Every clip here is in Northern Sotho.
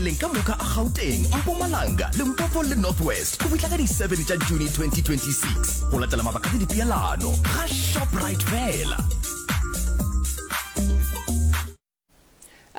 mabenkeleng ka moka a gauteng mpumalanga limpopo le north west go fihla ka di-7 tša june 2026 go latela mabaka le dipeelano ga shoprite fela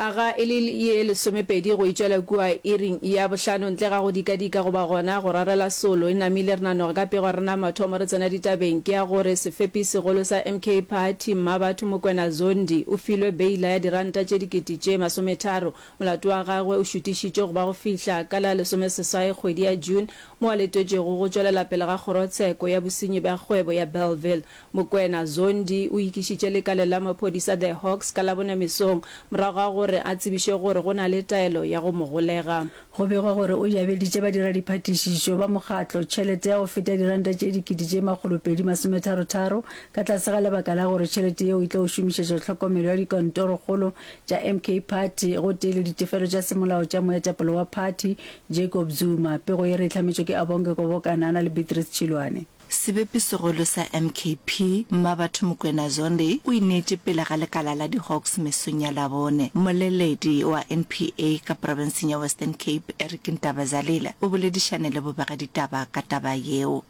aga e le ye lesomepedi go itšwela kua iring ya bohlano ntle ga go dikadika goba gona go rarela solo e namile re nanoge ka pego re na mathomo re tsena ditabeng ke ya gore sefepi segolo sa mk party mmabatho mokwena zondi o filwe beila ya diranta tše dikete tše masometharo Molato wa gagwe o šutišitšwe go ba go fihla ka la lesomeseswai kgwedi ya June, mo a letetšwego go tšwelela pele ga kgorotsheko ya bosenyi bja kgwebo ya Bellville. Mokwena Zondi o ikišitše lekaleng la maphodisa The Hawks ka Labone mesong morago ga gore a tsebišwe gore go na le taelo ya go mo golega. Go begwa gore o jabeditše badiradiphathišišo ba mokgatlo tšhelete ya go feta diranta tše dikete tše makgolopedi masometharotharo ka tlase ga lebaka la gore tšhelete yeo e tlo šomišetšwa tlhokomelo ya dikantorokgolo tša MK Party gotee le ditefelo tša semolao tša moetapele wa phathi, Jacob Zuma. Pego ye re e hlametšwe ke Abonge Kobokanana le Beatrice Chilwane. Sebepisegolo sa MKP, Mmabatho Mokwena Zondi, o ineetše pele ga lekala la diHawks mesong ya Labone. Mmoleledi wa NPA ka profenseng ya Western Cape, Eric Ntabazalile, o boledišane le bobegaditaba ka taba yeo.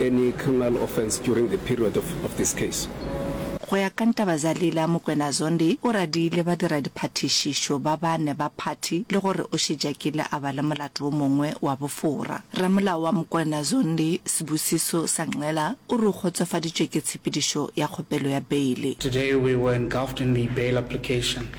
any criminal offence during the period of of this case. Go ya ka Ntabazalila, Mokwena Zondi o radiile badiradiphathišišo ba bane ba phathi le gore o šetše a kile a ba le molato wo mongwe wa bofora. Ramolao wa Mokwena Zondi, Sibusiso Sangcela, o re o kgotsofaditšwe ke tshepedišo ya kgopelo ya beile. Today we were engulfed in the bail application.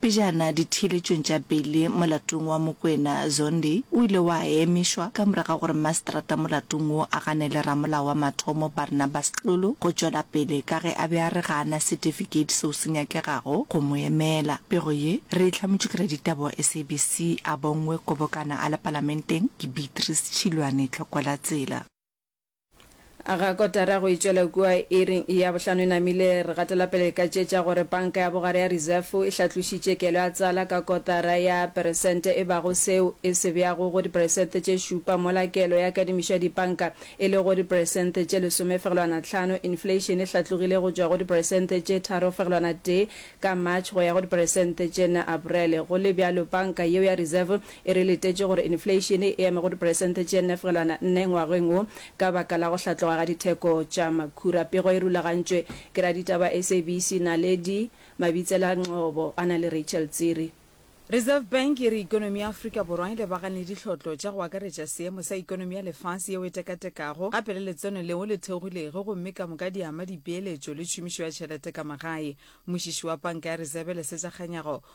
Pejana ditheeletšong tša pele molatong wa Mokwena Zondi o ile wa emišwa ka morago ga gore maseterata molatong wo a ganele ramolao wa mathomo Barnabas Xulu go tšwela pele ka ge a be a re ga a na setifikeiti seo se nyakegago go mo emela. Pego ye re e hlametšwe ke raditaba wa SABC a bongwe Kobokana a le Palamenteng ke Beatrice Tšhilwane Tlhokwalatsela. Ga kotara go e tšwela kua iri ya bohlano e namile, re gatela pele ka tše tša gore Panka ya Bogare ya Reserve e hlatlošitše kelo ya tsala ka kotara ya peresente e bago seo e se beago go diperesente tše šupa mola kelo ya kadimišo ya dipanka e lego diperesente tše lesomefegelwana tlhano. Inflation e hlatlogile go tšwa go diperesente tše tharofegelwana tee ka March go ya go diperesente tše nne Aprele. Go le bjalo, Panka yeo ya Reserve E re letetše gore infleišene e eme go diperesente tše nnefelwana nne ngwageng wo ka baka la go hlatloga ga ditheko tša makhura. Pego e rulagantšwe ke raditaba SABC Naledi Mabitsela Ngcobo a na le Rachel Tsiri. Reserve Bank e re ekonomi ya Afrika Borwa e lebagane le dihlotlo tša go akaretša seemo sa ekonomi ya lefase yeo e tekatekago, gape le letseno leo le theogilego gomme ka moka di ama dipeeletšo le tšhomišo ya tšhelete ka magae. Mmušiši wa Panka ya Reserve Lesetša Kganyago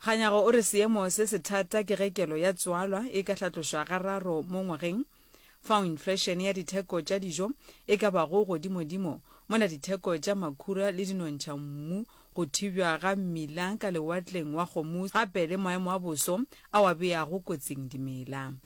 Kganyago o re seemo se sethata ke ge kelo ya tswalwa e ka hlatlošwa gararo mo ngwageng, fao inflation ya ditheko tša dijo e ka bago godimodimo, mola ditheko tša makhura le dinontšhammu, go thibjwa ga mmila ka Lewatleng wa Hormuz gape le maemo a boso ao a beago kotsing dimela.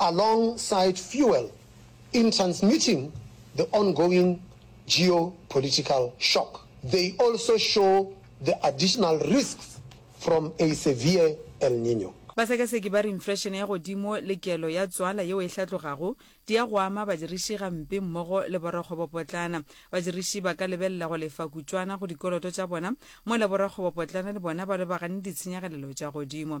along side fuel in transmitting the ongoing geopolitical shock. They also show the additional risks from a severe El Nino. Basekaseki ba re inflation ya godimo le kelo ya tswala yeo e hlatlogago di ya go ama badiriši gampe mmogo le borakgwebopotlana. Badiriši ba ka lebelela go lefa kutšwana go dikoloto tša bona mola borakgwebopotlana le bona ba lebagane le ditshenyagalelo tša godimo.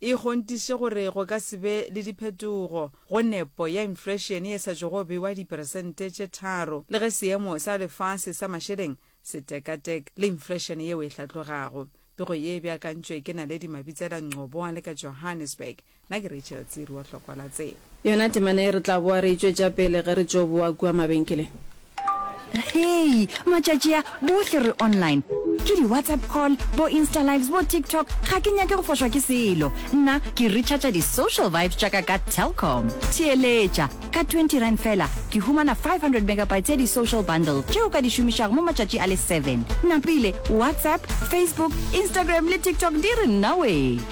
e kgontiše gore go ka se be le diphetogo go nepo ya inflation ye sa tšogo bewa diperesente tše tharo le ge seemo sa lefase sa mašeleng se tekatek le inflation yeo e hlatlogago. Pego ye e beakantšwe ke Naledi Mabitsela Ngcobo wa le ka Johannesburg. Na ke Rachel Tsiri wa hlokwa la tse. Yona temana ye re tla boa re e tšwetša pele ge re tšo boa kua mabenkeleng. Hei, matšatši a, bohle re online. Ke di-WhatsApp call, bo-Insta-Lives, bo-TikTok, ga ke nyake go fošwa ke selo. Nna ke recharger di-social vibes tša ka ka Telkom. Theeletša! Ka twenty rand feela, ke humana five hundred megabytes ya di-social bundle tše o ka di šomišago mo matšatši a le seven. Napile, WhatsApp, Facebook, Instagram le TikTok di re nnawee!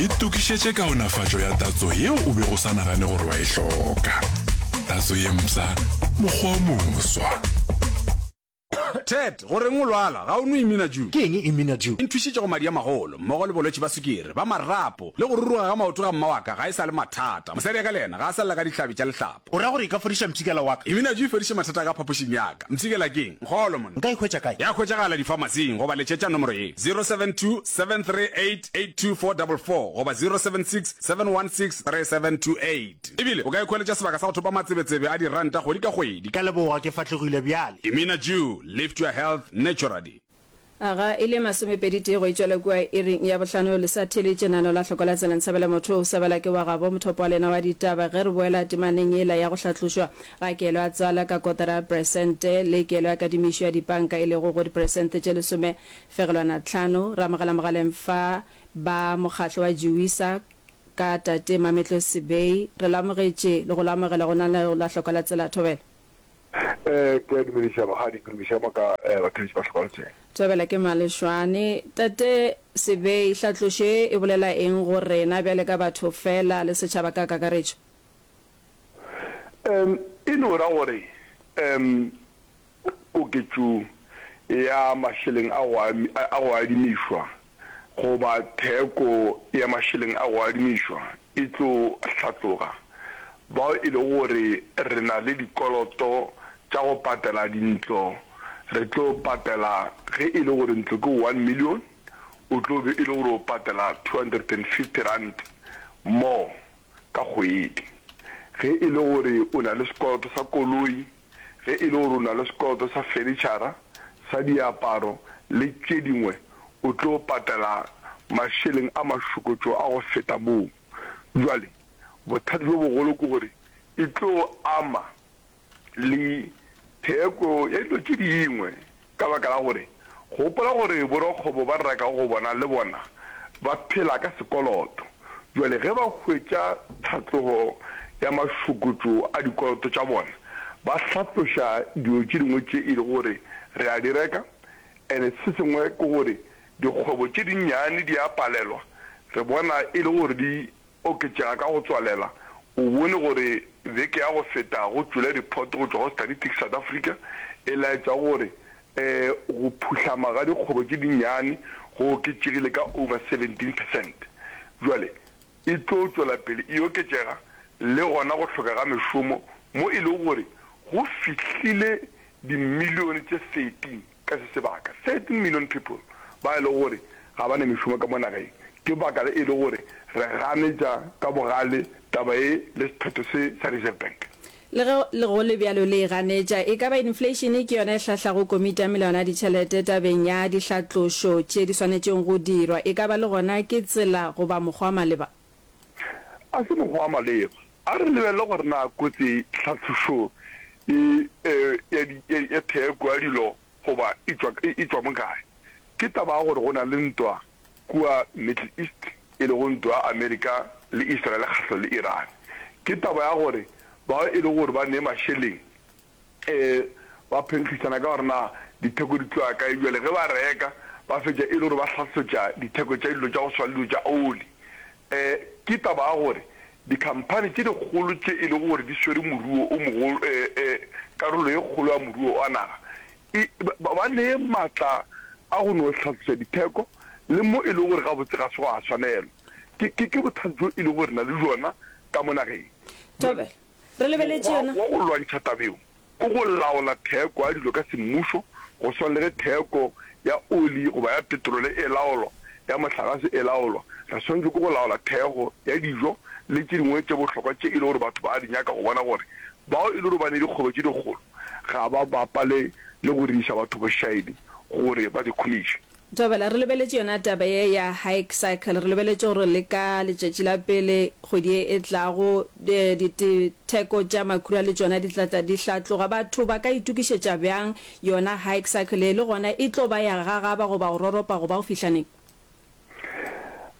Itokišetše kaonafatšo ya tatso yeo o bego o sa nagane gore wa e hloka. Tatso ye mpsha, mokgwa o moswa. Ted, go reng o lwala? Ga o nwe Immunadew? Ke eng Immunadew? E nthušitše go madi a magolo, mmogo le bolwetši ba sukiri, ba marapo, le go ruruga ga maoto ga mma wa ka ga e sa le mathata. Mosadi wa ka le yena ga a sa lla ka dihlabi tša lehlaba. O ra gore e ka fodiša mpshikela wa ka? Iminaju e fodiše mathata a ka phapošing ya ka. Mpshikela keng? Nkgolo monna. Nka e hwetša kae? Ya hwetšagala difamasing goba letšetša nomoro ye, 0727388244 goba 0767163728. E bile o ka e khweletša sebaka sa go thopa matsebetsebe a diranta kgwedi ka kgwedi. Ka leboga, ke fahlegile bjale. Iminaju, lift your health naturally. A ga e le masomepedi tee go e tšwela kua iring ya bohlano le sa thele tšenano la hloko la tsela Nsabela motho o sabela ke wa gabo mothopo wa lena wa ditaba ge re boela temaneng yela ya go hlatlošwa ga kelo ya tswala ka kotara ya peresente le kelo ya kadimišo ya dipanka e lego go diperesente tše lesome fegelwana tlhano re amogela mogaleng fa ba mokgatlo wa Jewisa ka tate Mametlo Sebei re lo amogetše le go lo amogela go na la hloko la tsela thobela Ee, ke a dumediša magadi, ke dumediša mo ka bathabetši ba hlokafetšeng. Thobela ke Malešwane. Tate Sebei, hlatlošo ye e bolela eng go rena bjale ka batho fela le setšhaba ka kakaretšo? Em, e no ra gore, em, koketšo ya mašeleng a go, a go adimišwa goba theko ya mašeleng a go adimišwa e tlo hlatloga, bao e lego gore re na le dikoloto tša go patela dintlo, re tlo patela, ge e le gore ntlo ke one million, o tlo be e le gore o patela two hundred and fifty rand more ka kgwedi. Ge e le gore o na le sekoloto sa koloi, Ge e le gore o na le sekoloto sa fenitšhara, sa diaparo le tše dingwe, o tlo patela mašeleng a mašokotšo a go feta moo. Bjale bothata bjo bogolo ke gore e tlo ama le theko ya dilo tše dingwe Ka baka la gore gopola gore borakgwebo ba rekago go bona le bona ba phela ka sekoloto. Bjale ge ba hwetša tlhatlogo ya mašokotšo a dikoloto tša bona, ba hlatloša dilo tše dingwe tše e lego gore re a di reka. And se sengwe ke gore dikgwebo tše dinnyane di a palelwa, re bona e le gore di Oketšega ka go tswalela, o bone gore beke ya go feta go tšwela diphoto go tšwa go Statistics South Africa e laetša gore go phuhlama ga dikgwebo tše dinnyane go oketšegile ka over 17 percent. Bjale e tlo tšwela pele e oketšega le gona go hloka ga mešomo mo e lego gore go fihlile dimilione tše 13. Ka se sebaka, 13 million people ba e lego gore ga ba na mešomo ka mo nageng. Ke baka la e le gore re ganetša ka bogale taba ye le sephetho se sa Reserve Bank. Le ge le go le bjalo le e ganetša. E ka ba inflation ke yona e hlahlago Komiti ya Melawana ya Ditšhelete tabeng ya dihlatlošo tše di swanetšego go dirwa. E ka ba le gona ke tsela goba mokgwa wa maleba. A se mokgwa wa maleba. A re lebelele gore na kotsi tlhatlošo e ya theko ya dilo goba e tšwa mo kae. Ke taba ya gore go na le ntwa kua Middle East, e lego ntwa ya Amerika le Israel kgahlo le Iran. Ke taba ya gore bao e lego gore ba nee mašeleng Ee, ba phenkgišana ka gore na ditheko di tloga kae bjale ge ba reka ba fetša e le gore ba hlatswetša ditheko tša dilo tša go swana le dilo tša oli. Ee, ke taba ya gore dikhamphani tše dikgolo tše e lego gore di swere moruo o mogolo, ee, ee, karolo ye kgolo ya moruo wa naga, e, ba, ba nee matla a go no hlatswetša ditheko le mo e lego gore gabotse ga se gwa swanelwa. Ke, ke, ke bothata bjo e lego gore re na le bjona ka mo nageng. Tobela. Re lebeletše yona. Mokgwa wa go lwantšha taba yeo ke go laola theko ya dilo ka semmušo, go swana le ge theko ya oli goba ya petrole e laolwa, ya mohlagase e laolwa. Re swanetšwe ke go laola theko ya dijo le tše dingwe tše bohlokwa tše e le gore batho ba a di nyaka go bona gore bao e le gore ba ne dikgwebo tše dikgolo ga ba bapale le go diiša batho bošaedi gore ba di khumiše. Thobela, re lebeletše yona taba ye ya hike cycle, re lebeletše go re le ka letšatši la pele kgwedi ye e tlago, ditheko tša makhura le tšona di tla tla di hlatloga. Batho ba ka itokišetša bjang yona hike cycle ye, le gona e tlo ba ya gagaba goba go roropa goba go fihla neng?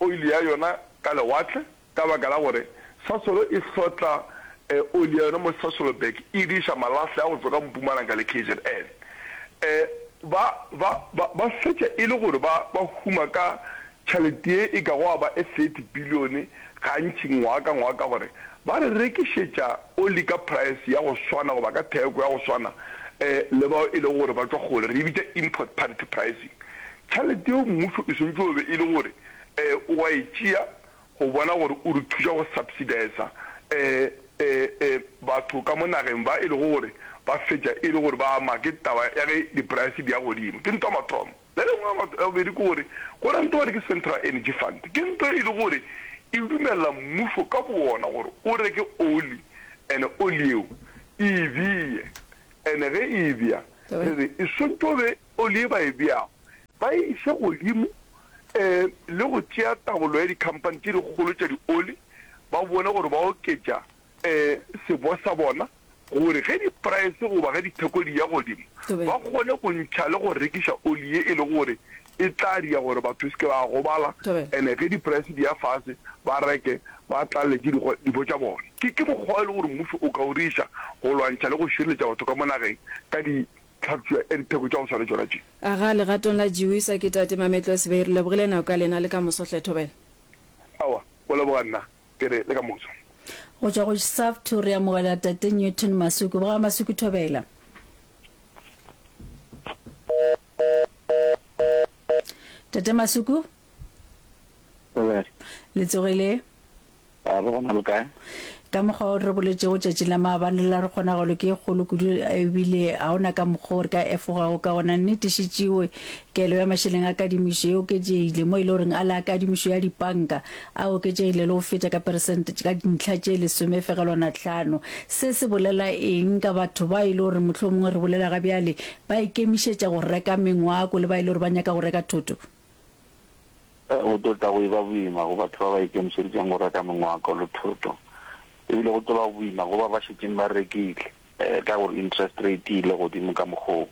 oli ya yona ka lewatle ka baka la gore Sasolo e hlotla oli ya yona mo Sasolburg e di iša malahle a go tšwa ka Mpumalanga le KZN. Ba, ba, ba, ba fetša e le gore ba, ba huma ka tšhalete ye e ka go a ba e thirty bilione gantši ngwaga ka ngwaga ka gore ba re rekišetša oli ka praese ya go swana goba ka theko ya go swana le bao e lego gore ba tšwa kgole, re e bitša import parity pricing. Tšhalete yeo mmušo e swantšwe o be e le gore o wa e tšea go bona gore o re thuša go subsidisa batho ka mo nageng ba e lego gore ba fetša e le gore ba ama ke taba ya ge di price di ya godimo. Ke ntwa mathomo. Le lengwe ya bobedi ke gore go na le ntwa gore ke Central Energy Fund. Ke ntwa e le gore e dumelela mmušo ka bowona gore o reke oli and oli yeo e e beye and ge e e beya re re e swantšwe o be oli ye ba e beago ba e iše godimo le go tšea taolo ya dikhamphani tše dikgolo tša dioli ba bone gore ba oketša sebo sa bona gore ge dipraese goba ge ditheko di ya godimo ba kgone go ntšha le go rekiša oli ye e lego gore e tla dira gore batho ba se ke ba gobala and-e ge dipraese di ya fase ba reke ba tlalelwe ke dibo tša bona. Ke mokgwa o e lego gore mmušo o ka o diriša go lwantšha le go šireletša batho ka mo nageng ka tlhapšwa ya ditheko tša go swana tšona tše. Aga legatong la Giwisa ke Tate Mametlo Sibey. Re lebogile nako ka lena le ka moso hle Thobela. Aowa, go leboga nna ke re le ka moso. Go tšwa go Savthu re amogela Tate Newton Masuku. Boga Masuku Thobela. Tate Masuku. Le tsogile? A re gona le kae? Ka mokgwa o re boletšego tšatši la maabane la re kgonagalo ke e kgolo kudu ebile ga o na ka mokgwa o re ka efogago ka gona. Nnete šetšewe kelo ya mašeleng a kadimišo e oketšegile mo e le goreng a le a kadimišo ya dipanka a oketšegile le go feta ka peresente ka dintlha tše lesomefegelwana tlhano. Se se bolela eng ka batho bao e le gore mohlomongwe re bolela ga bjale ba ikemišetša go reka mengwako le bao e le gore ba nyaka go reka thoto? Go tlo tla go eba boima go batho ba ba ikemišeditšeng go reka mengwako le thoto, e bile go tlo ba boima go ba ba šetšeng ba rekile ka gore interest rate e ile godimo ka mokgwa wo.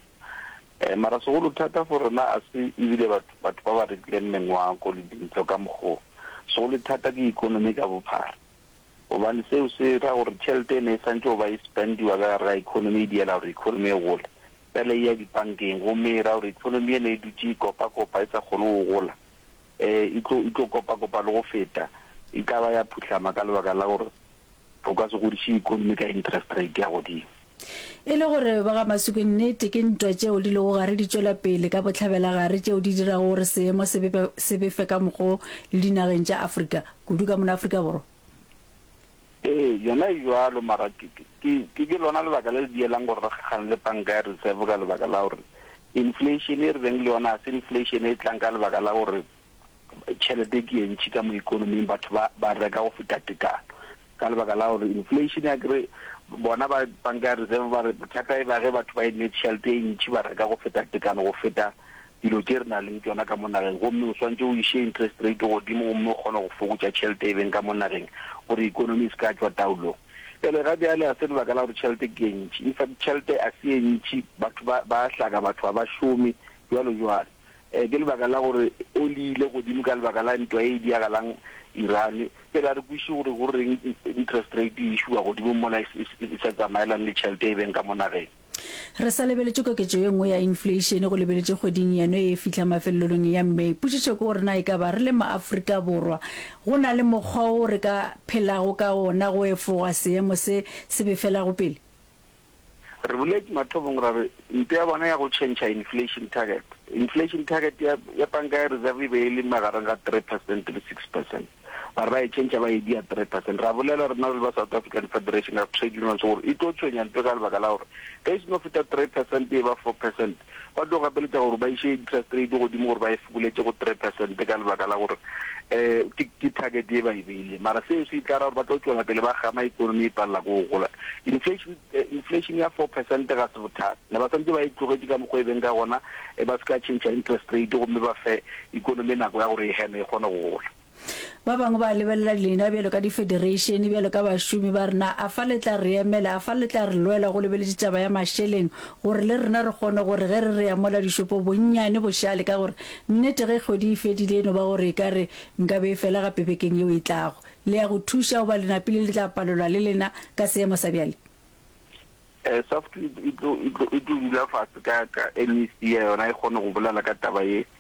Mara segolo thata for rena a se e bile batho ba ba rekileng mengwako le dintlo ka mokgwa wo, segolo thata ke ekonomi ka bophara. gobane seo se ra gore tšhelete e ne e santse go ba e spendiwa ka gare ga economy e diela gore economy e gole fela e ya dipankeng gomme e ra gore economy e ne e dutše e kopa-kopa e sa kgone go gola um e tlo e tlo kopa-kopa le go feta e tla ba ya phuhlama ka lebaka la gore o ka se godiše economy ka interest rate ya godimo E le gore ba ga Masuku nnete ke ntwa tšeo di lego gare di tšwela pele ka bohlabelagare tšeo di dirago gore seemo se befe ka mokgo le dinageng tša Afrika, kudu ka mono Afrika Borwa? Ee, yona e bjalo, mara ke lona lebaka le le dielang gore re kgakgane le panka ya reserve ka lebaka la gore inflation e re beng le yona ga se inflation e tlang ka lebaka la gore Tšhelete ke ye ntši ka mo ikonoming, batho ba ba reka go feta tekano ka lebaka la gore inflation ya kere bona ba banka ya reserve ba re bothata e ba ge batho ba e ne tšhelete e ntši ba reka go feta tekano go feta dilo tše re na leng tsona ka mo nageng gomme o swantse o iše interest rate godimo gomme o kgone go fokotša tšhelete e beng ka mo nageng gore economy e se ka tswa taolong pele ga bjale a se lebaka la gore tšhelete ke e ntši in fact tšhelete a se e ntši batho ba hlaka batho ga ba šome jwalo jwalo Ee, ke lebaka la gore o le ile godimo ka lebaka la ntwa e e diagalang Iran. Ke re a re kwešiše gore go reng interest rate e šuwa godimo mola e sa tsamaelane le tšhelete e beng ka mo nageng. Re sa lebeletše koketšo ye nngwe ya infleišene go lebeletše kgweding yeno e fihla mafelelong ya May. Potšišo ke gore na e ka ba re le maAfrika Borwa go na le mokgwa wo re ka phelago ka wona go efoga seemo se se befelago pele? Re boletše mathomong ra re ntwa ya bona ya go tšhentšha inflation target, inflation target ya, ya panka ya reserve e be e le magareng ga three percent le six percent, ba re ba e tšhentšha ba e dia three percent. Ra bolela rena re le ba South African Federation of Trade Unions gore e tlo tshwenya ntwa ka lebaka la gore ge e se no feta three percent e ba four percent, Ba tlo gapeletša gore ba iše interest rate godimo gore ba e fokoletše go three percent ka lebaka la gore um ke ke target ye ba e beileng. Mara seo se tla ra gore ba tlo tšwela pele ba gama economy e palela ko go gola. Inflation inflation ya four percent ga se bothata. Ne ba santse ba e tlogetše ka mokgwa e beng ka gona, ba se ka change interest rate gomme ba fe economy nako ya gore e heme e kgone go gola. Ba bangwe ba lebelela lena bjalo ka difedereišene, bjalo ka bašomi, ba re, Na a fa le tla re emela? A fa le tla re lwela go lebeletše taba ya mašeleng, gore le rena re kgone gore ge re re ya mola dišopo bonnyane bošale? Ka gore nnete ge kgwedi e fedile e no ba gore e ka re nka be e fela gape bekeng yeo e tlago. Le ya go thuša goba le napile le tla palelwa le lena ka seemo sa bjale? SAFTU e tlo dula fase ka ka MEC ya yona e kgone go bolela ka taba ye.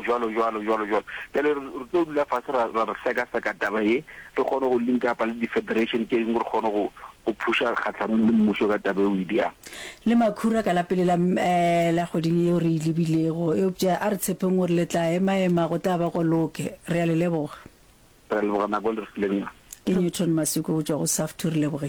Bjalo, bjalo, bjalo, bjalo. Bjale re, re tlo dula fase ra, ra, ra sekaseka taba ye, re kgone go linka apa le di-federation tše dingwe, re kgone go, go phusha kgahlanong le mmušo ka taba eo, Idi, a. Le makhura ka la pele la, eh, la kgweding yeo re e lebilego. Eupša a re tshepeng gore le tla emaema, go tla ba go loke. Re a le leboga. Re a leboga nako e le re fileng yona. Ke Newton Masuku go tšwa go SAFTU. Re lebogile.